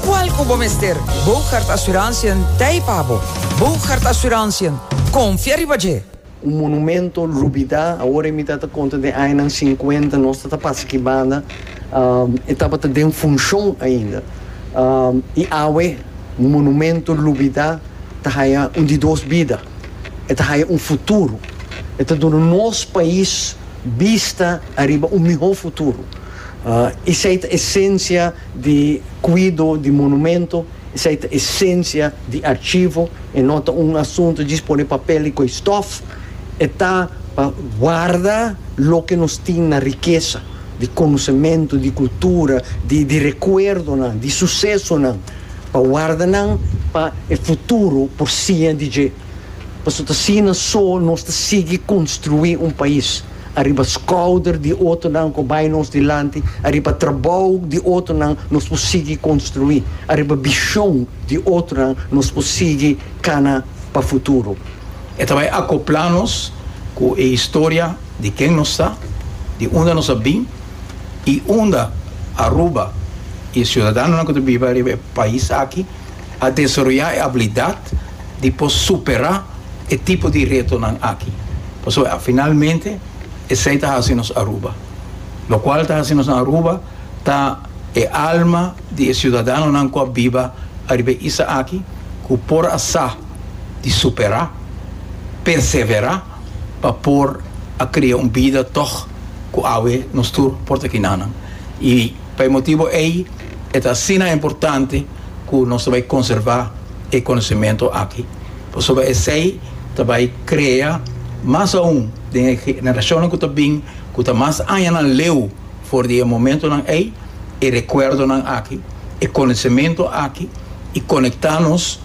Cual cu bo mester? Boogaard Assurantiën t'ei pa bo! Boogaard Assurantiën, confia riba dje! Un monumento rubida awor e mita ta conta den añanan cincuenta nos ta ta pasa aki banda e tabata den funcion ainda y awe monumento rubida ta haya un di dos bida e ta haya un futuro e ta duna nos pais bista ariba un miho futuro. Esei ta esensia di kuido di monumento, esei ta esensia di archivo, e no ta un asuntu djis pone papel i koe stof, e ta pa warda loke nos tin na rikesa di konosementu, di kultura, di di rekuerdonan, di susesonan, pa warda nan pa e futuro por siña di dje, pasobra ta asina so nos ta sigui konstruí un pais. Ariba skouder di otonan ku bai nos dilanti, ariba trabou di otonan nos por sigui konstruí, ariba bishon di otonan nos por sigui kana pa futuro. E ta bai akoplá nos ku e historia di ken nos ta, di unda nos a bin i unda Aruba i e siudadanonan ku ta biba riba e pais aki a desaroyá e abilidat di por superá e tipo di retonan aki. Pasobra finalmente esei ta hasi nos Aruba. Lokual ta hasi nos Aruba ta e alma di e siudadanonan ku a biba ariba e isa aki ku por a sa di superá, perseverá pa por a krea un bida tòg ku awe nos tur por ta kinanan. I. Pa e motibu ei e ta asina importante ku nos ta bai konservá e konosementu aki, pasobra esei ta bai krea mas aún den e generashonnan ku ta bin, ku ta mas añanan leu for di e momentunan ei, e rekuerdonan aki, e konosementu aki i konektá nos.